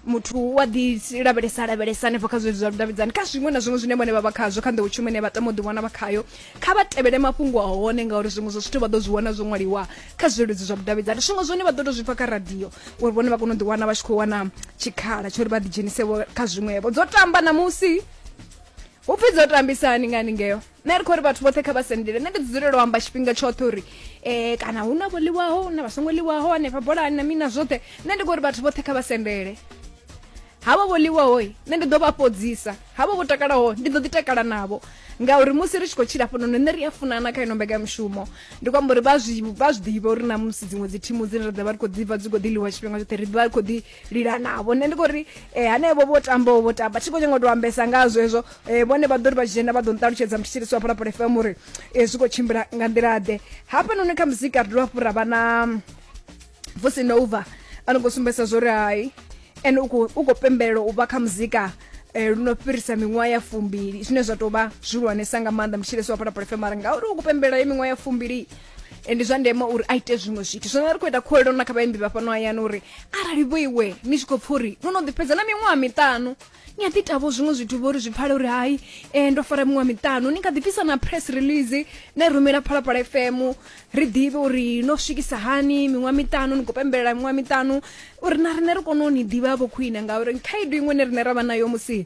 Muthu u a ḓi lavhelesa a lavhelesa hanefho kha zwezwi zwa vhudavhidzani kha zwiṅwe na zwiṅwe zwine vhone vha vha khazwo kha nḓowetshumo ine vha tama u ḓiwana vha khayo kha vha tevhele mafhungo a hone ngauri zwiṅwe zwa zwithu vha ḓo zwi wana zwo ṅwaliwa kha zwileludzi zwa vhudavhidzani zwiṅwe zwone vha ḓo tou zwi pfha kha radio uri vhone vha kone u ḓiwana vha tshi khou wana tshikhala tsho uri vha ḓidzhenise kha zwiṅwevho dzo tamba ṋamusi hu pfi dzo tambisani nga haningeo nṋe ri khou ri vhathu vhoṱhe kha vha sendele nṋe ndi ḓi dzulela u amba tshifhinga tshoṱhe uri um kana hu na vho ḽiwaho hu na vha songo ḽiwaho hanefha bolani na mini na zwoṱhe nṋe ndi khou ri vhathu vhoṱhe kha vha sendele havha vho ḽiwaho nṋe ndi ḓo vha fhodzisa havha vho takalaho ndi ḓo ḓi takala navho ngauri musi ri tshi khou tshila fhano nṋe ri a funana kha ino mbekanyamushumo ndi khou amba uri vha zwi ḓivha uri na musi dziṅwe dzi thimu dzine ra ḓa vha ri khou ḓi vha dzi khou ḓi ḽiwa tshifhinga tshoṱhe ri ḓi vha ri khou ḓi lila navho nṋe ndi khou ri um hanevho vho tambaho vho tamba thi khou nyanga u to ambesa nga hazwo hezwo um vhone vha ḓo ri vha dzhena vha ḓo nṱalutshedza muthetshelisi wa phalaphala fm uri um zwi khou tshimbila nga nḓila ḓe hafhanoni kha muzika ri dovha hafhu ra vha na vusinova a no khou sumbedzisa zwo ri hai ene u khou pembelela u vha kha muzika Eh, lu no fhirisa miṅwaha ya fumbili zwine zwa tou vha zwihulwanesa nga maanḓa mutshilesi wa phalaphalafemara ngauri u kupembela ye miṅwaha ya fumbili Eh, ndi zwa ndeme uri a ite zwiṅwe zwithu zwino ri khou ita khuwelelo na kha vhaimbi vha fhano hayani uri arali vho iwe ni tshi khou pfa uri no no ḓi fhedza na miṅwaha miṱanu ni a ḓi tavho zwiṅwe zwithu vho ri zwi pfale uri hai um ndo fara miṅwaha miṱanu ni nga ḓi bvisa na press release na i rumela phalaphala fm ri ḓivhe uri no swikisa hani miṅwaha miṱanu ni khou pembelela miṅwaha miṱanu uri na riṋe ri kone u ni ḓivha vho khwine ngauri khaedu iṅwe ne riṋe ra vha nayo musi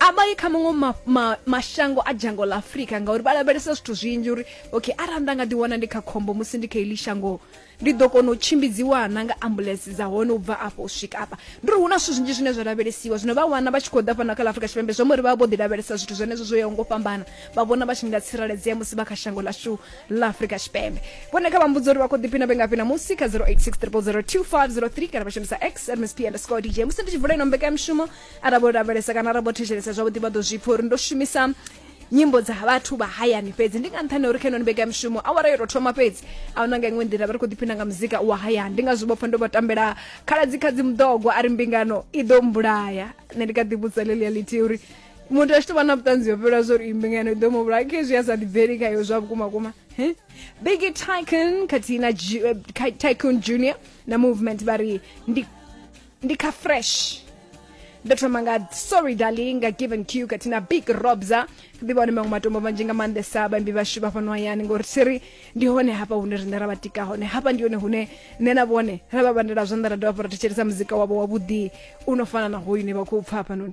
a vha yi kha maṅwe ma, ma, mashango a dzhango ḽa afurika ngauri vha lavhelesa zwithu zwinzhi uri okay arali nda nga ḓiwana ndi kha khombo musi ndi kha iḽi shango ndi ḓo kona u tshimbidziwa na nga ambulensi dza hone u bva afho u swika afha ndi uri hu na zwithu zwinzhi zwine zwa lavhelesiwa zwino vha wana vha tshi khou ḓa fhano kha ḽa afurika tshipembe zwi amba uri vha vho ḓi lavhelesa zwithu zwenezwo zwo yaho ngo fhambana vha vhona vha tshi nga tsireledzea musi vha kha shango ḽashu ḽa afurika tshipembe vhone kha vha mbudza uri vha khou ḓiphina vhe ngafhi namusi kha 086 0002503 kana vha shumisa x msp underscore dj musi ndi tshi vula ino mbekanyamushumo arali vho lavhelesa kana arali vho thetshelesa zwavhuḓi vha ḓo zwi pfha uri ndo shumisa nyimbo dza vhathu vha hayani fhedzi ndi nga nṱhani uri kha ino nibega mishumo awara yo tou thoma fhedzi a huna nga iṅwe nḓila vha ri khou ḓiphina nga muzika wa hayani ndi nga zwi vhopfa ndo vha tambela khaladzi khadzi muḓogwa a ri mbingano i ḓo mbulaya nṋe ndi ka ḓi vhudza lelia lithi uri muthu a tshi tou vha na vhuṱanzi ho fhelwa zwo ri mbingano i ḓo mu vhulaya khezwi a sa ḓibveli khayo zwa vhukuma kuma biggie tycon khathihi na tycon junior na movement vha ri ndi ndi kha fresh ndo thoma nga sorry darling nga given q kati na big robza ḓivha hone maṅwe matombo manzhi nga maanḓesa vhaimbi vhashu vha fhano hayani ngori siri ndi hone hafha hune riṋe ra vha tika hone hafha ndi hone hune nṋe na vhone ra vha vhandela zwanḓa ra dovha hafhu ra thetshelesa muzika wavho wavhuḓi u no fana na hoyu ne vha khou pfa hafhanoni